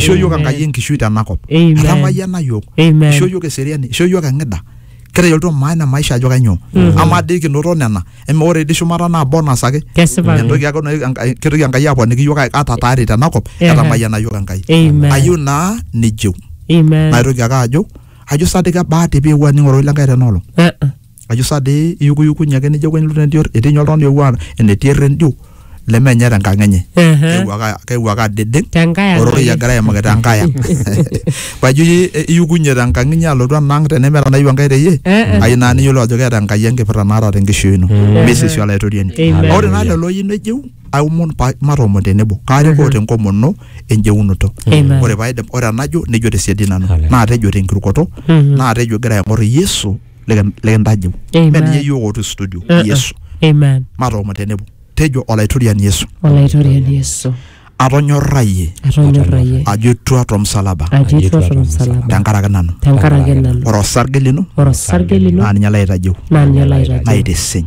Ishoo yiok Amen. Enkai enkishui tena kop. Amen. Etamayiana yiok. Amen. Ishoo yiok eseriani. Ishoo yiok eng'ida. Kitayiolito maana e maisha ajo kainyoo. Amaa dii kinoto nena. Eme ore dii shumata naa bonus ake. Kesipa ake. Entoki ake naitoki Enkai- kitoki Enkai aponiki yiok ata tayari tena kop. Ehe. Etamayiana yiok Enkai. Amen. Ayieu naa nijeu. Amen. Naitoki ake ajo ajo sa dii kebaa te pee epuo aning ororei le Enkai tena olong. Eh, eh. ajo saa dii iyukuyukunye ake nijo kwenye lute ndior etii ninye oltung'ani oewuo a- enetii errendio lemenye tenkang enye Ehe. Keewuo ake- keewuo ake adedeng Tenkae ang' ororei ake. egira aimaki tenkae ang pajo iye- e- iyukunye tenkang inyi alotu enaang tenemeeta nayieu enkae teyie Eh, eh. ayieu naa niyiolou ajo keeta enkai enkipirta naata tenkishui ino misisi olaitoriani Amen. ore naa lelo oyieu nejeu aomon pa- matoomon tenebo kaarikoo tenkomono enjeunoto Amen. ore paidip ore enajo nejo tesiadi nanu Hallelujah. naatejo tenkirukoto Mhm. naatejo egira aing'or yesu liki- likintajeu Amen. mme ninye yiok otii studio Uh, uh. yesu amen matoomon tenebo tejo olaitoriani yesu olaitoriani yesu atonyorrayie atonyorrayie ajo etua tomsalaba ajo etua tolmsalaba tenkaraki nanu tenkaraki nanu ore osarge lino ore osarge lino naa ninye laitajeu naa ninye laitajeu naitisiny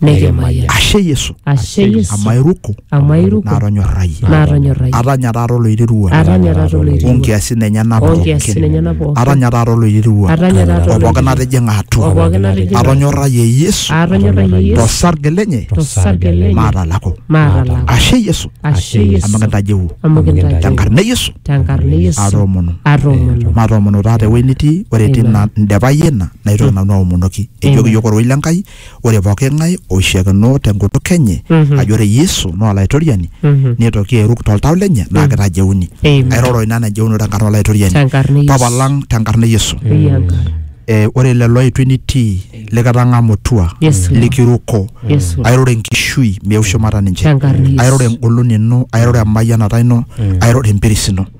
Nikimayian. ashe yesu Ashe Yesu. amu airuko Amu airuko. natonyorrayie Natonyorrayie. atanya taata oloirirua Atanya taata oloirirua. onkiasin enyena Onkiasin enyena pookin. atanya taata oloirirua Atanya taata o pookin oloirirua. natijing'a atua O pookin natijing'a. atonyorrayie yesu Atonyorrayie Yesu. tosarge lenye Tosarge lenye. maatalako Maatalako. ashe yesu Ashe Yesu. amu kintajeu Amu kintajeu. tenkarna e yesu Tenkarna e Yesu. atoomonu Atoomonu. matoomono taata ewueji nitii ore etii Amen. ina ndepayie ina naitoki nanu aomonoki ejoki Amen. yiok orwei le nkai Ore pooki ng'ae oishakeno te nkutuk enye ajo ore Yesu naa Olaitoriani neitoki airuk to ltau lenye naa keitajeuni. Amen. Airoro ina najeuno te nkarna o Laitoriani. Te nkarna e Yesu. Papa lang te nkarna e Yesu. Eyi Enkai. Eh, ore lelo oitu enitii likitang'amutua Yesu. likiruko Yesu. airoro enkishui meu shumata ninche Te nkarna e Yesu. airoro engolon ino airoro emayianata ino airoro empiris ino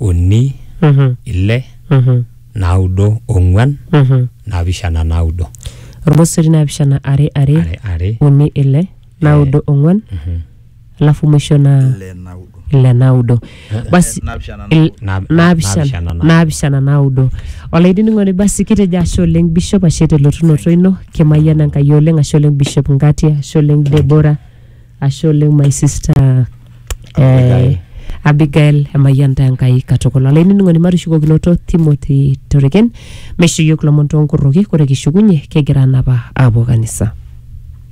uni Mhm. ile Mhm. naudo ong'uan Mhm. naapishana naudo Ormosori naapishana are are are are uni ile naudo ong'uan Mhm. alafu mwisho na ile naudo ile naudo basi naapishana il- Na- na- naapishana naapishana naudo. naapishana naudo olainining'oni basi kitejo ashe oleng bishop ashe telotunoto ino kimayian enkai oleng ashe oleng bishop ngati ashe oleng debora Ashe oleng my sister Abigail. eh, Abigail emayian taa Enkai katukul. Olainining'oni matushukokinoto Timothy Toreken meisho iyiook lomon toonkorroki kore kishukunye kigira anapa aapuo kanisa.